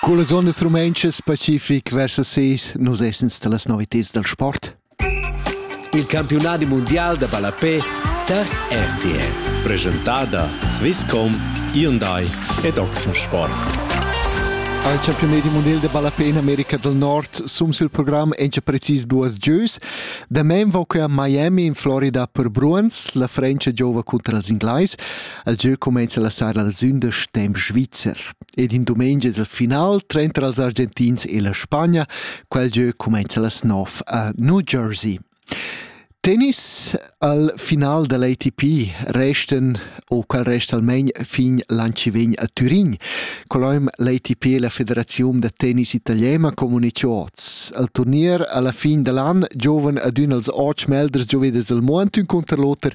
Cullas ondas rumentschas pacific versa ses nus essens dallas novitads dal sport. Il campiunadi mundial da ballapé tar RTR. Presentada Swisscom, Hyundai ed Oxensport. Al campiunadi mondial de ballapé in America del Nord sum sil program encha precis duas gieus. Da men va que a Miami in Florida per Bruins, la Frencha giova contra els Inglais. El gieu cumenza la sara da sündas temp svizzer ed in dumengia es el final tranter els Argentins e la Spagna. Quel gieu cumenza las 9 a New Jersey. Tennis al final dell'ATP resten o quel resta almein fin l'an ci vegn a Turin. Coloim l'ATP e la Federazione da tennis italiana comunicato al turnier alla fin dell'an giovane ad un als 8 melders gioveders il Montun contro l'oter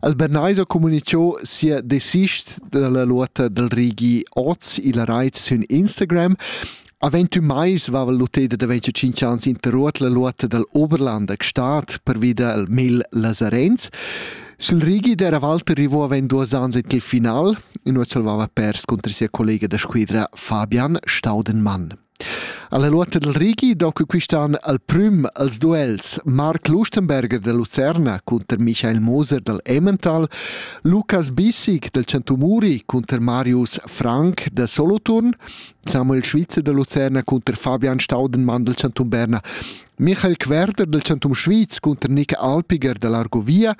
Albaneis ha communichau sia desist dalla luota dal rigi oz illa rait sün Instagram. A 21 mais vava l'uteda da 25 ans interruot la luota dal Oberlander Gstaad pervi dal mil Lazarenz. Sul rigi d'era Walter arrivò avend duos ans in il final, in ot salvava pers contro sia collega da squidra Fabian Staudenmann. Alla luota dal Rigi doca quist'an al prüm als duels Marc Lustenberger da Lucerna cunter Michael Moser dal Emmental, Lukas Bissig dal Centumuri cunter Marius Frank da Soloturn, Samuel Schwitzer da Lucerna cunter Fabian Staudenmann dal Centum Berna Michael Querder del Chantum Schwyz cunter Nika Alpiger dalla Argovia,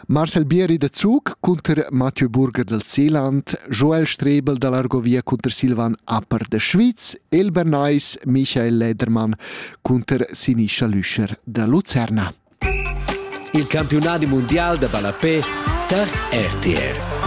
Marcel Bieri da Zug cunter Mathieu Burger del Seeland, Joel Strebel dall'Argovia cunter Silvan Appert de Schwyz, El Bernais, Michael Ledermann cunter Sinischa Lüscher da Lucerna. Il campiunadi mundial da ballapé tar RTR.